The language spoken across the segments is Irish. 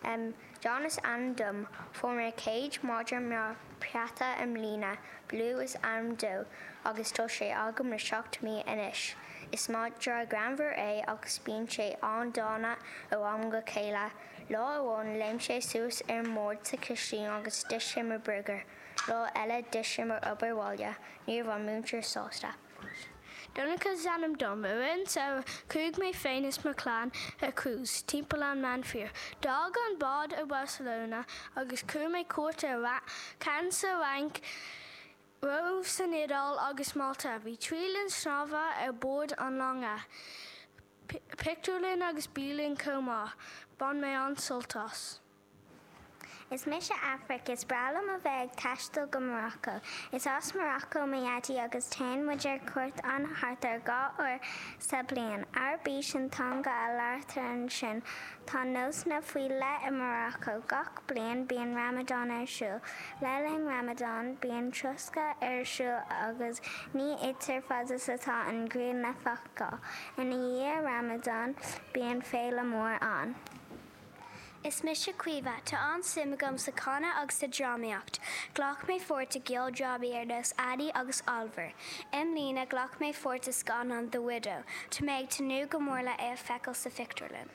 Em, John is ainm dom. Fuair mé mo chéad madra mar peata i mbliana, Blue is ainm dó agus tá sé agam le seacht mí anois. Is madra greannmhar é agus bíonn sé an-dána ó am go chéile. Lá amháin léim sé suas ar an mbord sa chistín agus d'ith sé mo burgar. Lá eile d'ith sé mo obair bhaile, ní raibh an múinteoir sásta. Donncha is ainm dom. I rith an tsamhraidh chuaigh mé féin is mo chlann ar cruise timpeall an Meánmhuir. D'fhág an bád i mBarcelona agus thug mé cuairt ar Cannes sa Fhrainc, Róimh san Iodáil agus Malta. Bhí trí linn snámha ar bord an longa, pictiúrlann agus bialann chomh maith. Bhain mé an-sult as. Is mise Aifric. Is breá liom a bheith ag taisteal go Morocco. Is as Morocco mo dhaidí agus téann muid ar cuairt ann thart ar dhá uair sa bliain. Araibís an teanga a labhartar ansin. Tá nósanna faoi leith i Morocco. Gach bliain bíonn Ramadan ar siúl. Le linn Ramadan bíonn troscadh ar siúl agus ní itear fad is atá an ghrian le feiceáil. Ina dhiaidh Ramadan bíonn féile mór ann. Is mise Caoimhe. Tá an-suim agam sa canadh agus sa drámaíocht. Ghlac mé pháirt i gceoldrámaí ar nós Annie agus Oliver. I mbliana, ghlac mé pháirt i scannán The Widow. Tá mé ag tnúth go mór le é a fheiceáil sa phictiúrlann.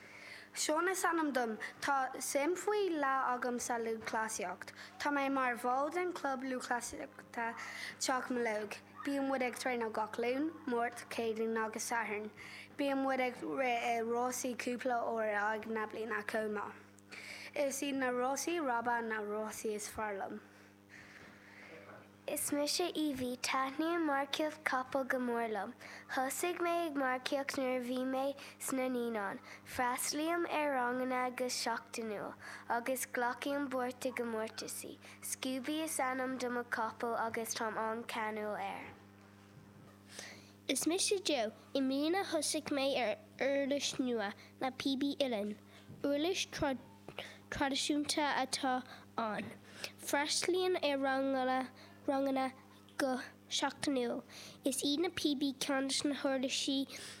Seán is ainm dom. Tá suim faoi leith agam sa lúthchleasaíocht. Tá mé mar bhall den chlub lúthchleasaíochta Teach Mealóg. Bíonn muid ag traenáil gach Luan, Máirt, Céadaoin agus Satharn. Bíonn muid ag rith i rásaí cúpla uair in aghaidh na bliana chomh maith. Is iad na rásaí ráibe na rásaí is fearr liom. Is mise Evie. Taitníonn marcaíocht capall go mór liom. Thosaigh mé ag marcaíocht nuair a bhí mé sna naíonáin. Freastlaím ar ranganna go seachtainiúil agus glacaím páirt i gcomórtaisí. Scooby is ainm do mo capall agus táim an-ceanúil air. Is mise Joe. I mbliana thosaigh mé ar uirlis nua, na píobaí uilleann. Uirlis traidisiúnta atá ann. Freastlaím ar ranganna go seachtainiúil. Is iad na píobaí ceann de na huirlisí is fearr liom.